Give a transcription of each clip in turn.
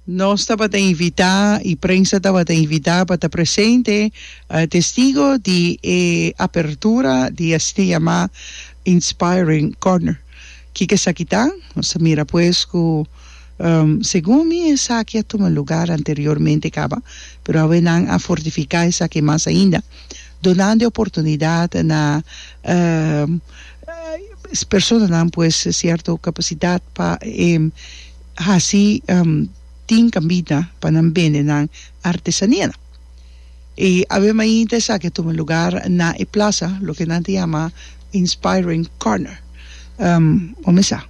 Nos tabata invitá i prensa tabata invitá pa ta presente testigo di e apertura di asina yamá Inspiring Corner. Kiko esaki ta? Nos a mira pues ku segun mi esaki a tuma lugar anteriormente kaba, pero awe nan a fortifiká esaki mas ainda donando e oportunidat na personanan pues sierto kapasitat pa e hasi tin kambita pa nan bende nan artesanianan. I awe mainta esaki a tuma lugar na e plasa loke nan ta yama Inspiring Corner. Ome sa,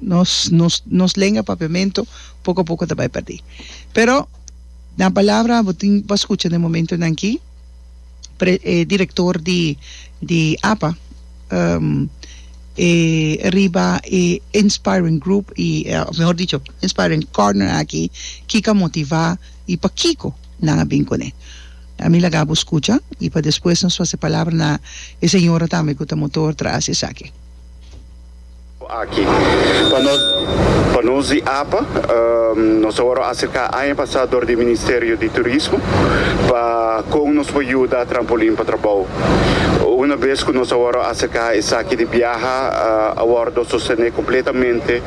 nos nos nos lenga papiamentu poko a poko ta bai perdí. Pero nan palabra bo tin bo a skucha na e momentunan akí. director di di apa e riba e inspiring group y of mehor dicho inspiring corner aki kico a motiva y pakico nan a bin con e a mi laga bo scucha y pa despues nos fasi palabra na e señora tambe cu ta motor tras esaki. Aki pa nos pa nos di apa nos a wòrdu aserká aña pasá dor di Ministerio di Turismo pa kon nos por yuda Trampolin pa trabou. Una bes ku nos a wòrdu aserká esaki di biaha a wòrdu sostené kompletamente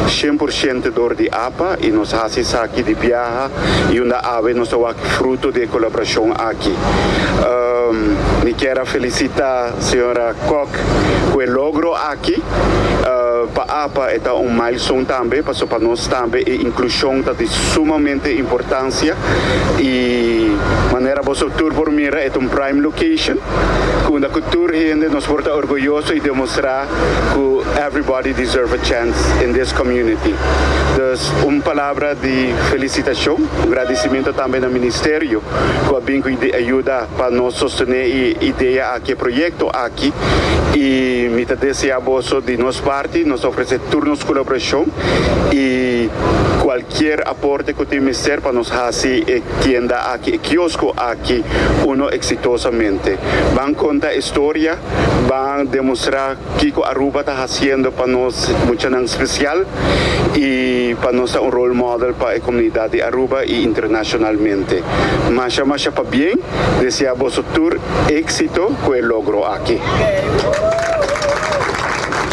shen por shente dor di apa i nos hasi esaki di biaha i unda awe nos ta wak fruto di e kolaborashon aki. Mi kier a felisitá señora Kok ku e logro. Ki pa apa e ta un milestone tambe, pasobra pa nos tambe e inclusion ta di sumamente importancia y manera boso tur por mira e ta un prime location cu unda cu tur hende nos por ta orgulloso y demostra cu everybody deserve a chance in this community. Dus un palabra di felicitacion, un gradicimento tambe na Ministerio cu a bin cu e ayuda. pa nos sostené e idea aki, e proyekto aki. I mi ta deseá boso di nos parti nos ta ofresé tur nos kolaborashon i kualkier aporte ku tin mester pa nos hasi e tienda aki, e kiosko aki uno eksitosamente. Ban konta e storia, ban demostrá. Kiko Aruba ta hasiendo pa nos muchanan special y pa nos ta un role model pa e comunidad di Aruba y internacionalmente. Masha masha pa bien, desea boso tur exito cu e logro aki.